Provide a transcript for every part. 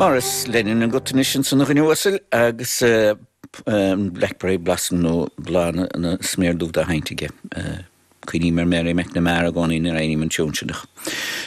Maurice Lennon agat anois ansan a dhuine uasail agus Blackberry Blossom nó Bláth na Sméar Dubh dá sheint aige. Cuimhním ar Mary McNamara i gcónaí nuair a sheinnim an tiún sin.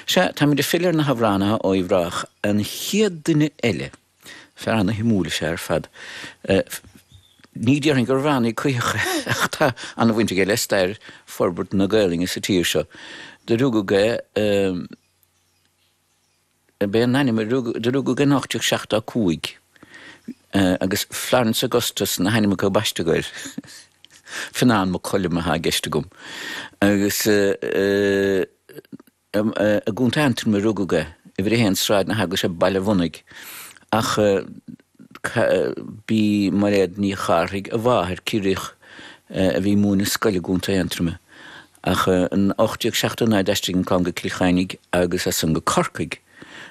Sea, táimid ag filleadh ar na hamhránaithe ó Uíbh Ráthach. An chéad duine eile, fear ana shuimiúil is ea ar fad. Ní déarfainn gurbh amhránaí coíoch é ach tá ana bhaint aige le stair forbairt na Gaelainne sa tír seo. Do rugadh é ab ea an t-ainm do rugadh é in 1875 agus Florence Augustus na hainmneacha a baisteadh air. Fionán Mac Coluim atá i gceist agam. Agus i gContae Aontroma a rugadh é, uimhir a haon Sráid na hEaglaise, Baile Mhonaidh. Ach B'í Mairéad Ní Charthaigh a mháthair, Ciarraíoch a bhí ag múineadh scoile i gContae Aontroma. Ach in 1879 d'aistrigh an clann go Cill Chainnigh agus as san go Corcaigh,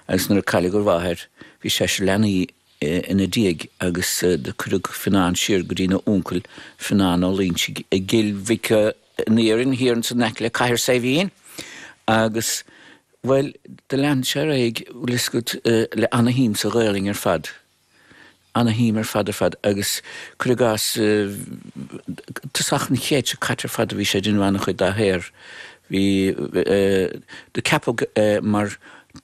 agus nuair a cailleadh a mháthair bhí seisear leanaí ina diaidh agus do cuireadh Fionán siar go dtína uncail, Fionán Ó Loingsigh, i gCill Mhic. Iarainn thiar ansan in aice le Cathair Saidhbhín agus bhuel do lean sé ar aghaidh bhfuil le ana shuim sa Ghaolainn ar fad ana shuim ar fad ar fad agus cuir i gcás tosach an chéad seo caite ar fad a bhí sé ag déanamh ana chuid dá shaothar bhí do ceapadh mar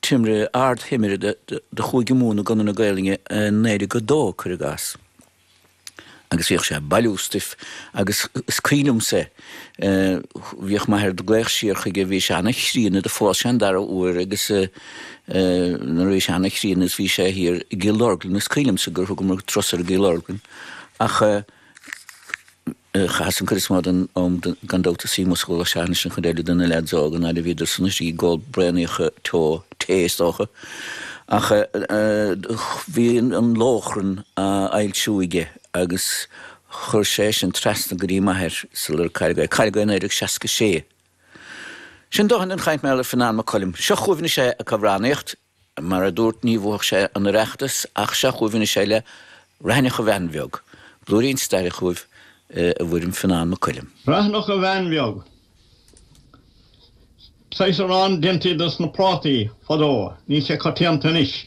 timire ardthimire do Chúige Mumhan i gConradh na Gaolainne i 1902 cuir i gcás. agus bhíodh sé ag bailiú stuif agus is cuimhin liomsa é, bhíodh m'athair, ag glaoch siar chuige, bhí sé an-chríonna, do phós sé an dara huair agus nuair a bhí sé an-chríonna is bhí sé thiar i gCill Orglan, is cuimhin liomsa gur thugamar turas air i gCill Orglan ach. Chaitheas an cuid is mó den am gan dabht im shuí amuigh sa charr ag seachaint an chuid eile de na leaids óga, an fhaid a bhíodar san istigh ag ól braonaíocha teo, tae is dócha. Ach bhí an Lóchrann á fhoilsiú aige agus chuir sé é sin trasna go dtí m'athair sular cailleadh é. Cailleadh é i 1966. Sin dóthain den chaint b'fhéidir ar Fionán Mac Coluim. Seo chugaibh anois é ag amhránaíocht. Mar a dúrt, ní bhuafadh sé an Oireachtas ach seo chugaibh anois é le Raithneach a Bhean Bheag, blúirín staire chugaibh i bhfoirm Fionán Mac Coluim. Raithneach a Bhean Bheag. Saghas arán deintí de sna prátaí fadó, níl sé coitianta anois.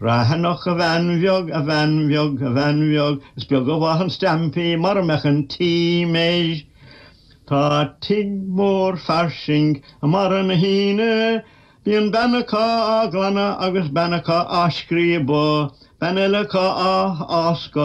Raithneach, a bhean bheag, a bhean bheag, a bhean bheag, is beag a mhaith an stampaí mara mbeadh an t-im air. Tá tigh mór fairsing i mbarra na hAoine. Bíonn bean acu á glanadh agus bean acu á scríobadh, bean eile acu á fháscadh.